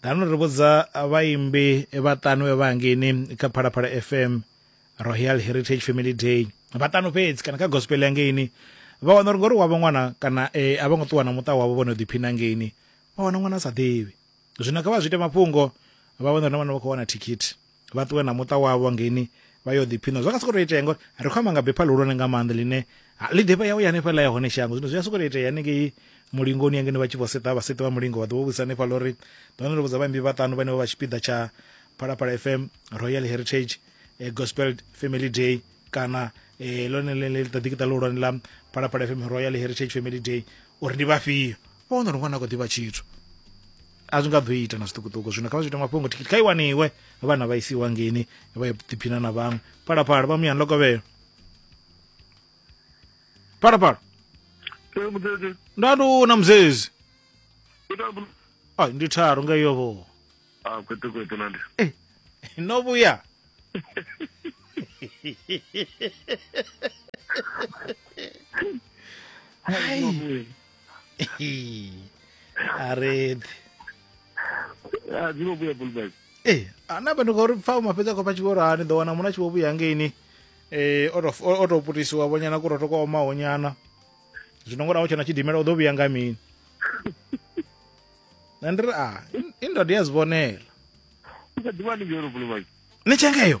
Ngano ri vhudza vhaimbi vhaṱanu vhe vha hangeini kha Phalaphala FM Royal Heritage Family Day vhaṱanu fhedzi kana kha gospel ya ngeini vha wana uri ngori wavho ṅwana kana e, a vho ngo ṱuwa na muṱa wavho vho no ḓiphina ngeini vha wana ṅwana a sa ḓivhi zwino kha vha zwi ite mafhungo vha wana uri na vhana vha khou wana thikhithi vha ṱuwe na muṱa wavho ngeini vha yo ḓiphiṋa zwa nga sokou tou itea ngori ri khou amba nga bepha ḽihulwane nga maanḓa ḽine ḽi ḓifha yawe ya hanefhaḽa ya hone shango zwino zwi a sokou tou itea hanengei mulingoni ya ngeno vha tshi vho seṱa vha seṱi vha mulingo vha ḓo vho vhudzisa hanefhaḽa uri ḓone ndo vhudza vhaimbi vhaṱanu vhane vho vha tshipiḓa tsha phalaphala fm royal heritage eh, gospel family day kana eh, lone ḽiṱaḓikiṱa ḽihulwane ḽa phalaphala fm royal heritage family day uri ndi vhafhio vha wana uri ṅwana a khou ḓivha tshithu a zwi nga ḓo ita na zwiṱukuṱuku zwino kha vha zwi ita mafhungo thikhithi kha i waniwe vhana vha isiwa ngeni vha ḓiphina na vhaṅwe phalaphala vha muyani lokovhelo phalaphala nda ndi u na muzezi ai ndi tharu nga iyo vho ah, eh, no vhuya a re a dzi vho vhuya bulbek ee ana vha ndi khou ri pfa uma fhedza khou pfa tshivhoro ha ni ḓo wana muna tshivho vhuya ngeini eh o to- o- o to putisiwa vhonyana ku roto kwa omaho nyana zwino ngona utshena tshidimela u ḓo vhuya nga mini na ndi ri a i ndodo ya zivhonela u kha ḓivha ni ngeno bulbek ni tshengeyo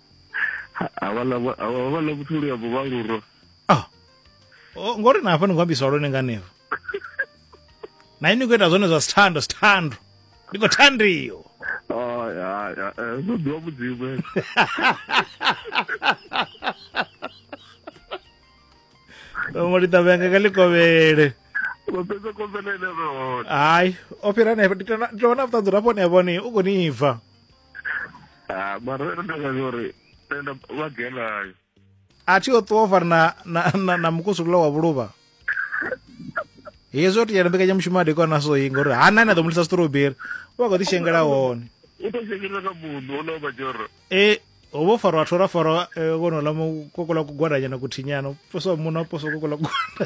avhala vhuthuli ya vhuvhaluro ah. oh, ngori na hafha ni khou ambiswa lwone nganevo na ini khou ita zwone zwa sithando sithando ndi khou thandiyo oh, eh, zwo ḓiwa mudzimu ngo ḽi ṱavhea nga ḽi kovhele hayi o fhira nefho ndi tovha na vhuṱanzi uri afho ni a vhone u khou ni bva Ah, mara ndo ndakazi uri tenda vagelayo a thi o ṱuwa o fari na, na, na, na mukusukula wa vhuluvha hezwi o tiyana mbekanyamushumo a dekwa naso yi ngori ha nani a ḓo mulisa strawberry u vha khou ḓi shengela hone u to shengela ka munhu o lova joro e ho vho farwa vhathu ra farwa eh, vhono ḽa mukokola kugwadanyana kuthinyana u posa wa muno a posa kokola kugwada